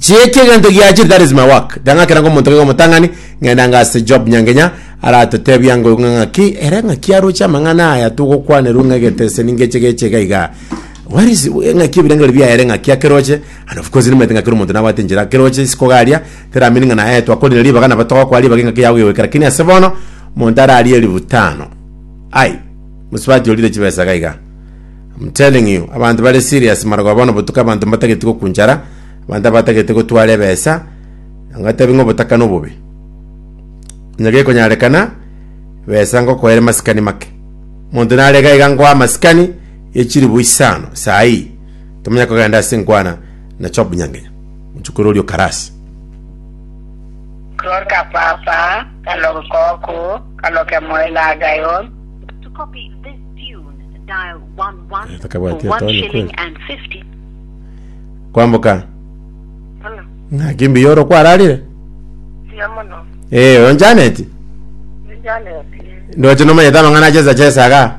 Chieke egento giachire that is my work ndang'akera ngo monto kego motang'ani ng'enda ngase job nyangenya aratotebia ngo ng'a ng'aki ere ng'aki aroche amang'ana aya togokwaneru ng'a geteseni ngeche geche iga iga where is ng'aki ebirengeri biaere ng'aki akeroche and of course nimanyete ng'a kero omonto nabwate enchera akeroche isiko garia teramini ng'a naye twakorire ribaga nabo togokora ribaga eng'aki yago egoika lakini ase bono monto ararie elifu tano ai mosubati orire chibesa iga iga I'm telling you, abanto bare serious maragoa bono botuko abanto mbatageti gokunchara, abanto abatagete gotwara ebesa, ngotebi ng'a obotaka nobobe. Onye gekonyarekana, besa ngokoere masikani make. Monto nare iga iga ngoa masikani ye chilibu isano saa ii, tomanya kogenda ase nkwana na Job Nyangenya, mochokoro oria o Karasi. K'lor ka papa, k'log koku, k'log kemoyo lagayon. But to copy this tune. Takabwati etoni kweli. Kwamboka. Ng'aki mbuya oro kwararire? Eh, oyo Janet. Ndoche nomanyete amang'ana ache esacha esaga.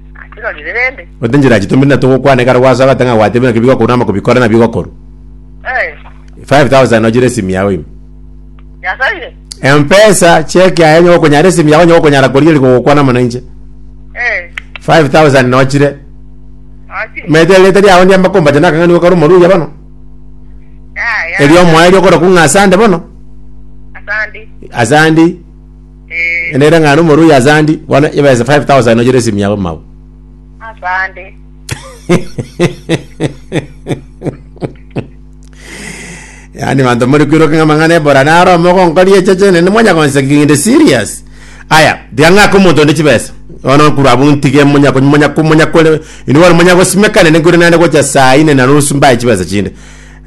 Akirorire rende. Onde njira chitomire na togokwana ekero gwasa ogate ng'a gwatebire naki bigokouna ama kobikora na bigokorwa. Eh. 5000 ochire esimi yao ime. Yasaire. Empesa cheki aye onye gokonyara esimi yao onye gokonyara koria eri kogokwana mono inche. Eh. 5000 nochire. Achire. Mete erete riao ndiamba kombacha na akang'ani gokora omoruya bono. Ya ya. Erio omoeri okora kung'a asande bono. Asandi. Asandi. Nere ng'ana omorui ase andi bono ebesa 5000 nochire esimu yabo mau. asande Yaani banto muri kwiruka ng'a mang'ana ebora naro mogonkoria echeche nende mwanya konseki kinde serious. Aya, tiga ng'aka omonto onde chibesa. Bono okorwa abwo ntige monya kony- monya ko- monya kore inwe bono monya gosimeka nende nkore naende gocha saa ine na nusu mbae chibesa chinde.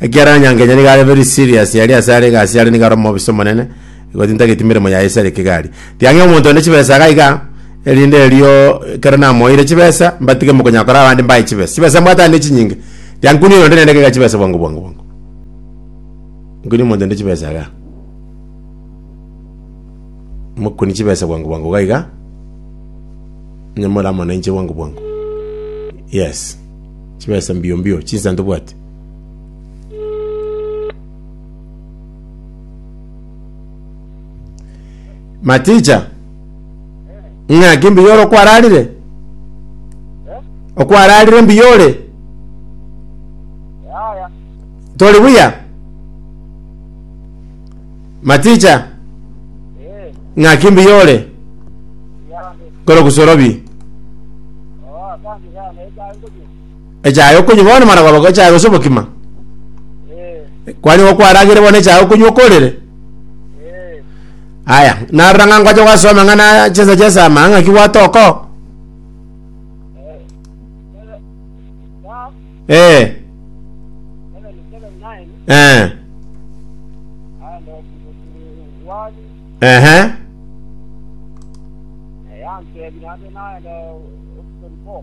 Ekiagera Nyankenya niga are very serious aria ase are egasi are niga are omobisa omonene. Igo tintageti meremo yaye ase ere kegari. Tiang'e omonto onde chibesa iga iga, erinde erio ekero namoeire chibesa, mbatige mokonyora kore abande mbae chibesa. Chibesa mbwate aye nechinyinge. Tiankunie oyonde naende iga iga chibesa bwango bwango bwango. Nkunie omonto onde chibesa iga. Mokunie chibesa bwango bwango iga iga. Nyamore amo nainche bwango bwango. Yes. Chibesa mbio mbio, chinsa ntobwati. Maticha, ng'aki mbuya ore okwararire? Okwararire mbuya ore? Yaya. Tori buya? Maticha, Eh. ng'aki mbuya ore? Yande. Kore gusorobi. Oh, asante sana. Eka ngoje. Echae okonywa bono mara kwaba echae gose obokima. Eh, Kwanyowa kwaragire bono echae okonywa okorire. eh, Aya, narora ng'a nkwache gwasoma ng'a na chinsa chiasama ng'a ki gwatoka oo. eh. Seven- Psalm Eh, 77:9, eh, ah, no, one, ehe, eh, yantebi nabe naye no, option four.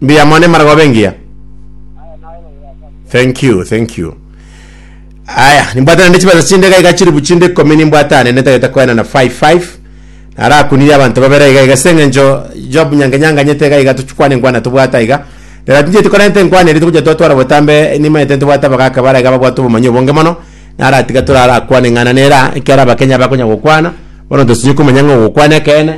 Mbuya mono emara goba engiya. Thank you, thank you. Aya, nimbwate nende chibesa chinde iga iga chiribu chinde ikomi nimbwate ane netagete koena na 55. Narakunirie abanto babere iga iga seng'encho Job nyange nyanganyete iga iga tuchikwane nkwana tobwata iga. Neratincheti korente nkwana eri togocha twatwara botambe nimanyete ntibwate abagaka bara iga babwate obomanyi obonge mono. naratiga torarakwane ng'ana nera, ekiara abakenya bakonya gokwana, bono tosinye komanya ng'a ogokwana ekeene,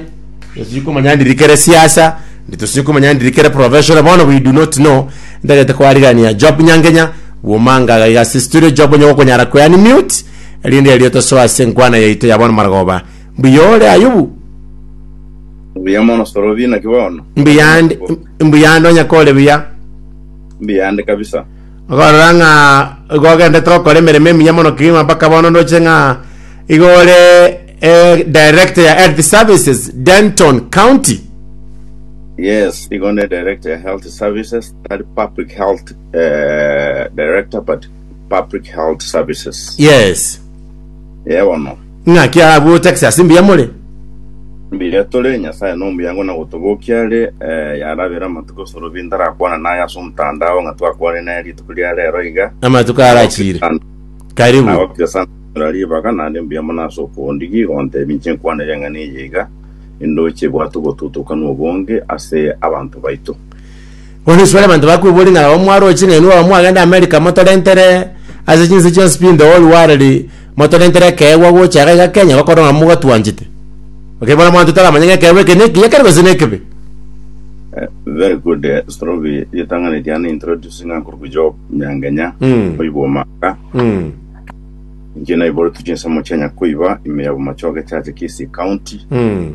tosinye komanya ndiri kere siasa, tosinye komanya ndiri kere professional, bono we do not know, ntagete koarigania Job Nyangenya, bwomanga iga iga ase estudio, Job onye gokonyara kwe unmute, erinde erio tosoe ase enkwana yaito ya bono marogoba. Mbuya ore Ayubu? Mbuya mono Sorobi, naki bono? Mbuyande, mbuyande onye kore buya. Mbuyande kabisa. Okorora ng'a igo ogendete gokora emeremo emiya mono kegima mpaka bono ndoche ng'a igo ore eh, director ya health services Denton County. Yes, igo ne director ya health services, tari public health eh, director but public health services. Yes. Yebono. Ng'aki abwo Texas mbuya more? Mbuya tore, Nyasaye nomuyango na gotobokia are. Eh, yarabera amatuko Sorobi ntarakwane naye ase omotandao ng'a twakwane naye rituko ria rero iga. Amatuko arachire. Karibu. Nagokire sana koira ribaga, nare mbuya mono ase okoondigi igo ontebi inche nkwanere eng'ana eye iga, indoche bwate obotutukanwa obonge ase abanto baito. Bono isiko abanto bakwebori ng'a nabo mwaroche ng'a inwe baba mwagenda Amerika motorentere ase chinse chionsi pi in the whole world motorentere ekeegwa gocha iga iga Kenya gokorwa ng'a mogatwanchete. Okay bono abanto taramanye ng'a ekeegwa eke neki ekero gose nekebe. Eh, very good eh, Strobi ritang'ani riane introduce ng'a nkoruku Job Nyangenya Mm. oibwa omaka Mm. inche naiboretwe chinsemo chia Nyakoiba ime ya Bomachoge Church Kisii County Mm.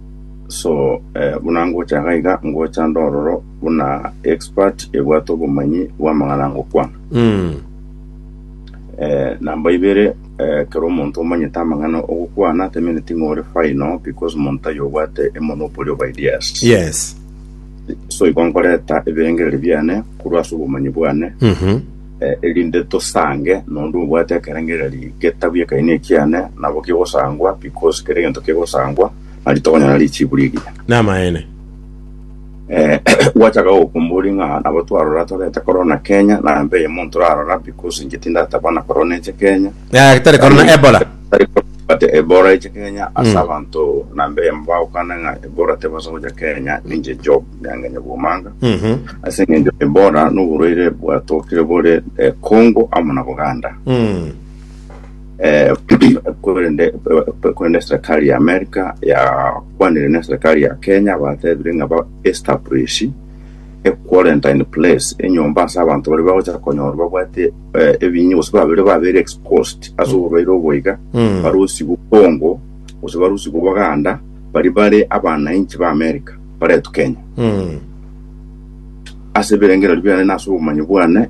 So eh, buna ngocha iga iga ngocha ndororo buna expert ebwate obomanyi bw'amang'ana ngokwana Mm. eh, namba ibere eh, kero omonto omanyete amang'ana ogokwana temeneti ng'ore final because omonto ayo obwate emonopoly of ideas Yes. so igo nkoreta ebirengereri biane korwa ase obomanyi bwane Mhm. Eh, erinde tosange nonde obwate ekerengereri getabu ekaina ekiane, nabo kegosangwa, because kera egento kegosangwa, nari tokonyora richibu riria. Namaene. Eh, gwachaka gokombori ng'a nabo twarora torete korona Kenya, na mbe eyemo ntorarora, because inche tindataba na korona eche Kenya, Eh, tari korona Ebola. But Ebola eche Kenya ase abanto nambe mbaukana ng'a Ebola tebaso gocha Kenya ninche Job nyange nyabwomanga Mhm. ase eng'encho Ebola noborwaire bwatokire bore eh, Congo amo na Buganda Mm. eh, korende eh, korende serikali ya America yakwanire ne serikali ya Kenya batebire ng'a ba establish a quarantine place enyomba ase abanto bari bagocha konyorwa babwate eh, ebinyia gose babere babere exposed ase oborwaire obo iga Mm. barusigwe Congo gose barusigwe Buganda bari bare abanainchi ba America baretwa Kenya Mm. ase ebirengererio biane na ase obomanyi bwane